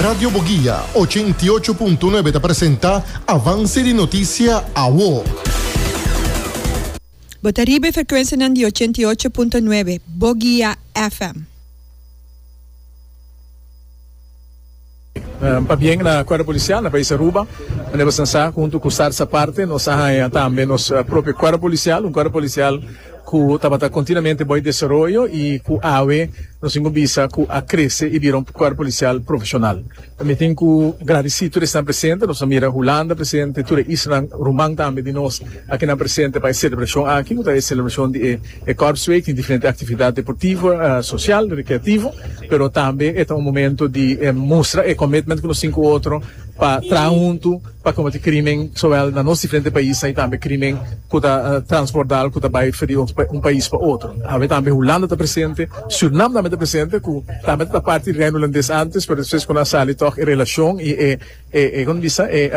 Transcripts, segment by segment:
Radio Boguia ochenta i ocho punto nuebe ta presenta Avance di Noticia Awo. Bo ta riba e frecuencianan di ochenta i ocho punto nuebe Boguia FM. Nan pa bien na cuerpo policial na pais Aruba. Manera nos a sa, hunto cu Sarsa Parte, nos a haña tambe nos propio cuerpo policial, un cuerpo policial. cu tabata continuamente bo e desaroyo y cu awe nos tin cu bisa cu a crece y bira un cuerpo policial profesional. Mi tin cu gradici tur esnan presente, nos a mira Hulanda presente, tur e islanan ruman tambe di nos aki nan presente pa e celebracion aki cu ta e celebracion di e Korpsweek, tin diferente actividad deportivo, social, recreativo, pero tambe e ta un momento di mustra e commitment cu nos tin cu otro pa traha hunto. pa kometi krimen sowel na nos diferente paisnan y tambe krimen ku ta transbordal ku ta bai for di un pais pa otro. Awe tambe Hulanda ta presente, Surinam tambe ta presente ku tambe ta ta parti di Reino Hulandes antes pero despues kunan sali tòg e relashon y e e kunda bisa e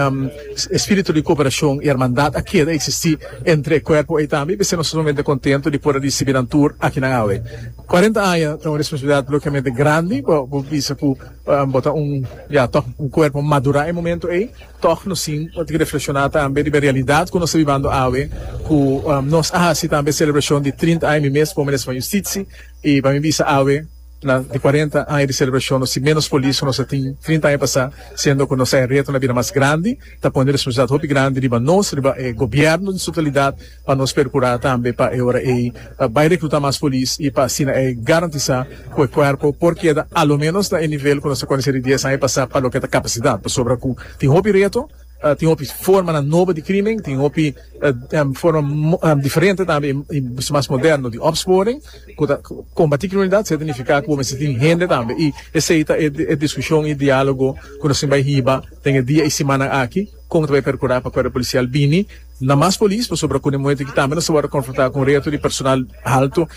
spiritu di koperashon y hermandad a keda eksistí entre e kuerpo ei tambe y p'esei nos ta sumamente kontento di por risibi nan tur akinan awe. Cuarenta aña ta un responsabilidad lokemente grandi bo bisa ku Bo ta un, ya tòg, un kuerpo madurá e momentu ei. Tòg nos tin ke reflekshoná tambe riba e realidat ku nos ta bibando awe, ku nos a hasi tambe e selebrashon di trinta aña. Mi mes pone nesba Yustitsi i pa mi bisa awe na e kuarenta aña di selebrashon nos tin ménos polis ku nos a tin trinta aña pasá, siendo ku nos sa e retonan a bira mas grandi, ta pone e responsabilidat hopi grandi riba nos, riba e gobièrnu den su totalidat. Pa nos percura tambe pa e ora ey ta bay recluta mas polis y pa asina ey garantisa cu e cuerpo por keda a lo menos na e nivel cu nos ta conoce di dies aña pasa pa loke ta capacidad pasobra cu tin hopi reto, tin hopi formanan nobo di crimen, tin hopi forma diferente tambe y bisto mas moderno di opsporing cu ta combati criminalidad seta nifica cu bo mester tin hende tambe y esey ta e discusion y dialogo cu nos tin bay hiba den e dia y simannan aki con ta bay percura pa cuerpo policial bini Na mas polis, pasobra cu nemuhé tiki tambe nos ta wòrdu konfrontá ku un reto di personal haltu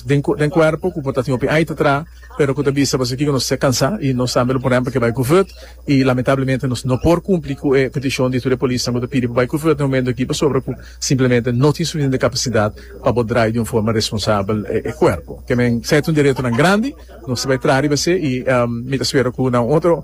den kuerpo ku por ta tin hopi ait atrás, pero ku ta bisa pa esaki ku nos ta kansá i nos tambe lo por hèmber ke bai ku vùt i lamentablemente nos no por kumpli ku e petishon di tur e polisnan ku ta pidi pa bai ku vùt den homentu aki pasobra ku simplemente no tin sufisiente kapasidat pa por drai di un forma responsabel e kuerpo. Ke men sa e ta un di retonan grandi, nos ta bai traha riba esei i mi ta spera ku na un otro.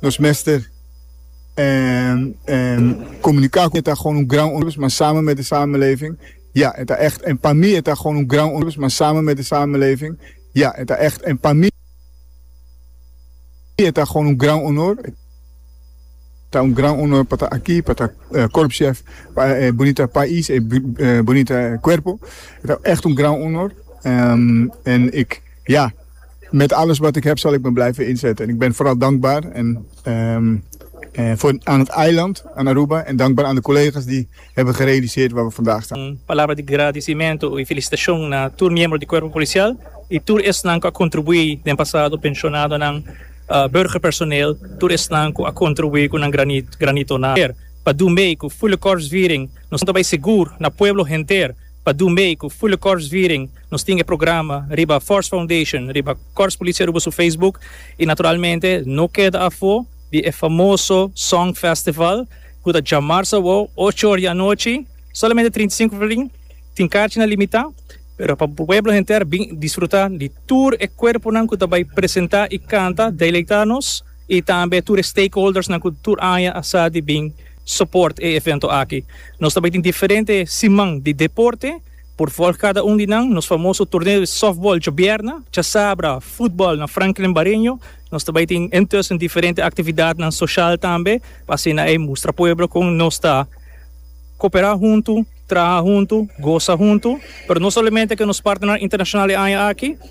Nos mester comunica cu e ta gewoon un gran onrust, ma samen met de samenleving, ja, e ta echt, en pa mi e ta gewoon un gran onrust, ma samen met de samenleving, ja, e ta echt, en pa mi e ta gewoon un gran honor, e ta un gran honor pa ta aki, pa ta korpschef pa e bunita pais, e bunita cuerpo, e ta echt un gran honor, en ik, ja. Met alles wat ik heb zal ik me blijven inzetten. Ik ben vooral dankbaar voor aan het eiland, aan Aruba en dankbaar aan de collega's die hebben gerealiseerd waar we vandaag staan. Un palabra di gradisimento y felicitacion na tur miembro di Cuerpo Policial y tur esnan cu a contribui den pasado, pensionadonan, burgerpersoneel, tur esnan cu a contribui cu nan granito na aer pa dun bay cu Fulecorpsviering nos ta bay segur na pueblo henter. Pa dun bay cu Fule Corps Viering nos tin e programa riba Force Foundation riba Corps Policia Aruba su Facebook y naturalmente no keda afo di e famoso Song Festival cu ta dja mars awor ocho or di anochi solamente trinta i sinku flrin tin carchina limita pero pa pueblo henter bin disfruta di tur e cuerponan cu ta bay presenta y canta deleita nos y tambe tur e stakeholders nan cu tur aña a sa di bin Support e evento aki. Nos ta bai tin diferente siman di deporte por volg cada un di nan. Nos famoso torneo di softball djobièrna, chasabra, football na Franklin Bareño. Nos ta bai tin intussen diferente actividadnan social tambe pa asina e mustra pueblo con nos ta coopera hunto, traha hunto, goza hunto. Pero no solamente cu nos partnernan internacional e aña aki.